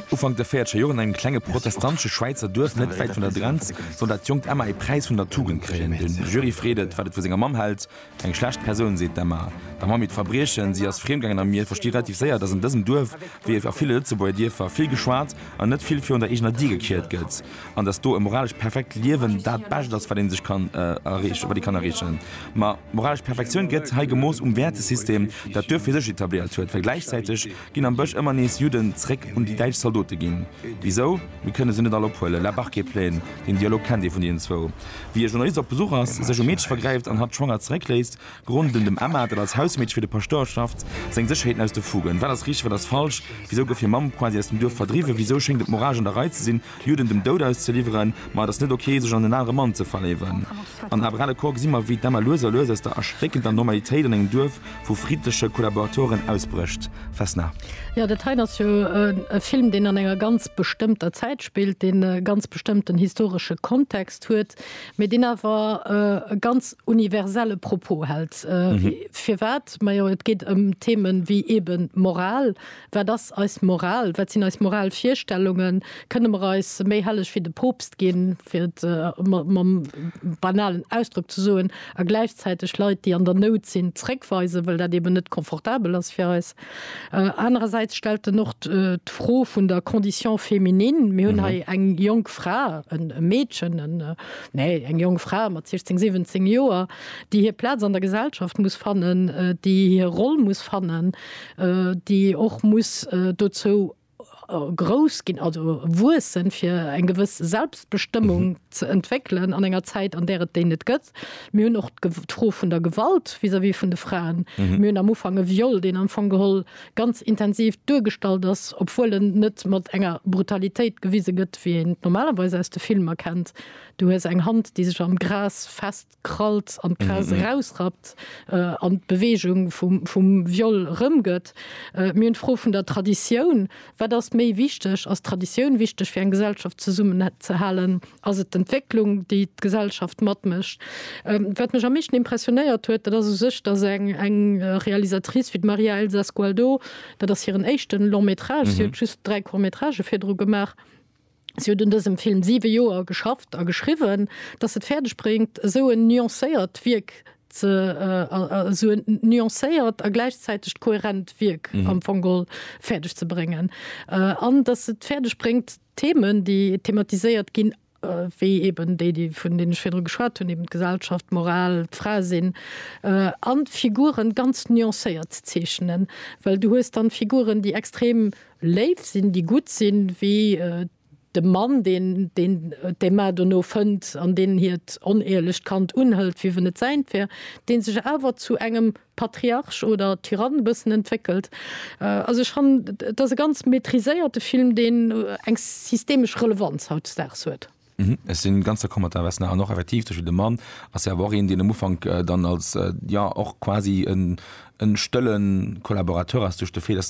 Ufank der véiertscher Joer an engem klenge protestantesche Schwäizer Duerf net wäit vun der Grenz soll dat jonkt Emma ee Präis vun der Tugend kréien. De Jury freet et, wat et vu senger Mamm hält, Eng schlecht Persoun, seet d'Emma der Mamm iert Verbriechen, Si ass friem gaangen a mir versti relativ séier, dass an dësem Duerf, wéi a ville Lëtzebuerger Dierfer, vill geschwat an net vill virun der eegener Dier gekiert gëtt an dass do e moralescht perfekt Liewen dat Bescht ass, wat ee sech kann erreechen. Ma, moralesch Perfektioun gëtt hei gemooss um Wäertesystem, dat d'Duerf fir sech etabléiert huet, well gläichzäiteg Ginn am Bësch ëmmer nees Judden zréck un déi däitsch Zaldote ginn? Wisou? Mir kënne se net all ophuelen. La Barque est pleine, den Dialog kennt ee vun deenen zwou. Wéi e Journalist op Besuch ass, sech um Meedche vergräift an hatt schwanger zeréckléisst, grond un dem Emma, dat als Hausmeedche fir de Paschtouer schafft, seng Sécherheeten aus de Fugen. Wat ass richteg, wat ass falsch? Wisou gouf hir Mamm quasi aus dem Duerf verdriwwen? Wisou schéngt et moralesch an der Rei ze sinn, Judden dem Doud auszeliwweren, ma et ass net ok, sech an en anere Mann ze verléiwen. An Abre le coeur gesi mer, wéi d'Emma lues a lues aus der erschréckender Normalitéit an engem Duerf vu friddleche Kollaboratoren ausbrécht. Vesna. Jo, dat hei ass jo e Film, deen an enger ganz bestëmmter Zäit spillt, deen e ganz bestëmmten historesche Kontext huet, mee deen awer e ganz universelle Propos hält. Firwat? Majo, et geet ëm Themen, wéi eeben d'Moral, Wat ass eis Moral? Wat sinn eis moral Virstellungen? Kënne mer eis méi helleg wéi de Poopst ginn, fir et mam banalen Ausdrock ze soen, a gläichzäiteg Leit, déi an der Nout sinn, zréckweisen, well dat eben net confortabel ass fir eis? Anerersäits stellt en och d'Fro vun der Condition féminine. Mir hunn hei eng jonk Fra, e Meedchen, nee, eng jonk Fra mat 16, 17 Joer, déi hir Plaz an der Gesellschaft muss fannen, déi hir Roll muss fannen, déi och muss dozou grouss ginn, also wuessen, fir eng gewëss Selbstbestëmmung ze entwéckelen an enger Zäit, an där et déi net gëtt. Mir hunn och d'Fro vun der Gewalt vis-à-vis vun de Fraen. Mir hunn am Ufank e Viol, deen am Fong geholl ganz intensiv duergestallt ass, obwuel en net mat enger Brutalitéit gewise gëtt, wéi een et normalerweis aus de Filmer kennt, Du hues eng Hand, déi sech am Gras fest. krallt an d'Gras erausrappt an d'Beweegung vum Viol erëmgëtt. Mir hunn d'Fro vun der Traditioun. Wat ass méi wichteg? Ass d'Traditioun wichteg fir eng Gesellschaft zesummenzehalen? Ass et d'Entwécklung, déi d'Gesellschaft matmécht? Wat mech am meeschten impressionéiert huet, dat ass u sech, datt eng Realisatrice wéi d'Maria Elsa Sgualdo, dat ass hiren éischte Long-métrage, si huet just dräi Court-métragë virdru gemaach, Si huet un dësem Film siwe Joer geschafft a geschriwwen, datt se et fäerdeg bréngt, esou en nuancéiert Wierk ze, esou en nuancéiert a gläichzäiteg kohärent Wierk am Fong geholl fäerdeg ze bréngen. An datt se et fäerdeg bréngt, d'Themen, déi thematiséiert ginn, wéi eben déi, déi, vun deenen ech virdru geschwat hunn, eben d'Gesellschaft, d'Moral, d'Fraesinn, an d'Figuren ganz nuancéiert ze zeechnen. Well du hues dann Figuren, déi extrem Léif sinn, déi gutt sinn, wéi de Mann, deen d'Emma dono fënnt an deen hiert onehrlecht Kand unhëlt, wéi wenn et säint wär, deen sech awer zu engem Patriarch oder Tyrann e bëssen entwéckelt. Also ech fannen, et ass e ganz maitriséierte Film, deen eng systemesch Relevanz hautdesdaags huet. Ech si ganz d'accord mat der Vesna. An och effektiv, zum Beispill de Mann ass jo awer och een, deen am Ufank dann als, jo, och quasi e stëlle Kollaborateur ass, duerch de Fait, dass en.